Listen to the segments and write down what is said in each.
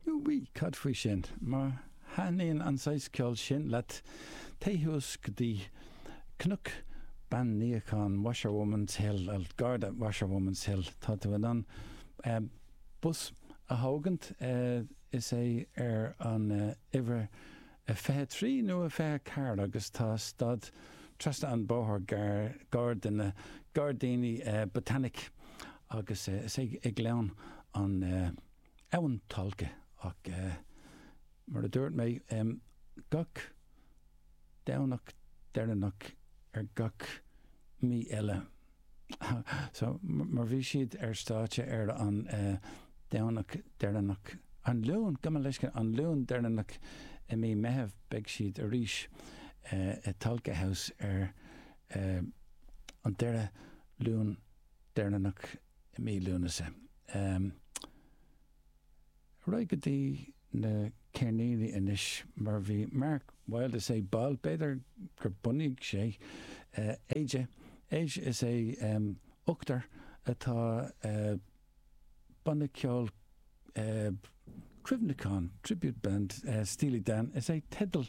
Úi, Cad faoi sin? Má thaitníonn an saghas ceoil sin leat, téigh suas go dtí Cnoc Bean Níocháin, Washerwoman's Hill, gar do Washerwoman's Hill, tá tú in ann bus a thógaint, is é ar an uimhir a 23 nó a 24 agus tá stad trasna an bóthar gar do na gairdíní Botanic agus is é ag gleann an Abhainn Tolka ach mar a dúirt mé gach Domhnach deireanach ar gach mhí eile. So, mar bhí siad ar stáitse ar an Domhnach deireanach, an Luan, gabh mo leithscéal, an Luan deireanach i mí Meitheamh, beidh siad arís i dTolka House ar an deireadh Luan deireanach i mí Lúnasa. Ar aghaidh go dtí. na ceirníní anois mar bhí mar bhaill de is é baill, b'fhéidir gur bhunaigh sé Aja, Aja is é ochtar atá banna ceoil cuimhneacháin, tribute band, Steely Dan is é teideal.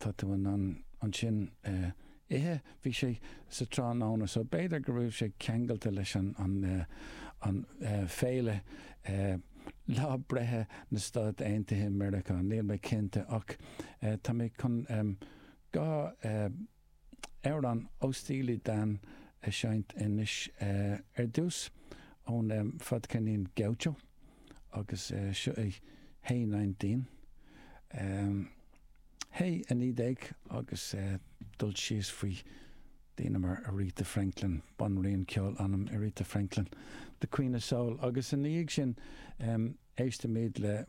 tá tú in ann ansin ithe. Bhí sé sa tráthnóna so b'fhéidir go raibh sé ceangailte leis an féile lá breithe na Stáit Aontaithe Meiriceá, níl mé cinnte ach tá mé chun dhá. amhrán ó Steely Dan a sheinnt anois ar dtús ón fadcheirnín Gaucho agus seo é Hey Nineteen. Hey, a naoi déag agus cur síos faoi daoine mar Aretha Franklin, banríon ceoil anam, Aretha Franklin, The Queen of Soul agus ina dhiaidh sin, Éistimid le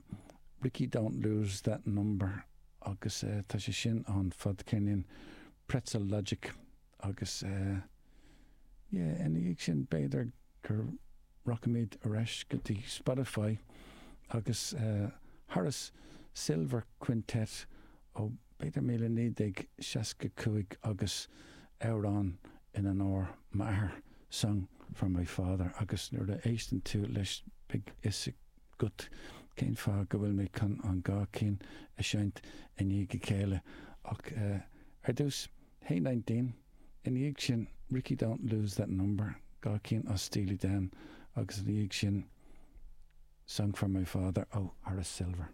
Rikki Don't Lose That Number agus tá sé sin ón fadcheirnín Pretzel Logic agus yeah ina dhiaidh sin b'fhéidir gur rachaimid ar ais go dtí Spotify agus Horace Silver Quintet ó b'fhéidir 1965 agus amhrán in onóir m'athar, Song for My Father, agus nuair a éisteann tú leis beidh fhios agat cén fáth go bhfuil mé chun an dhá cinn a sheinnt i ndiaidh a chéile ach ar dtús, Hey Nineteen, i ndiaidh sin Rikki Don't Lose That Number, dhá cinn ó Steely Dan, agus i ndiaidh sin Song for My Father ó Horace Silver.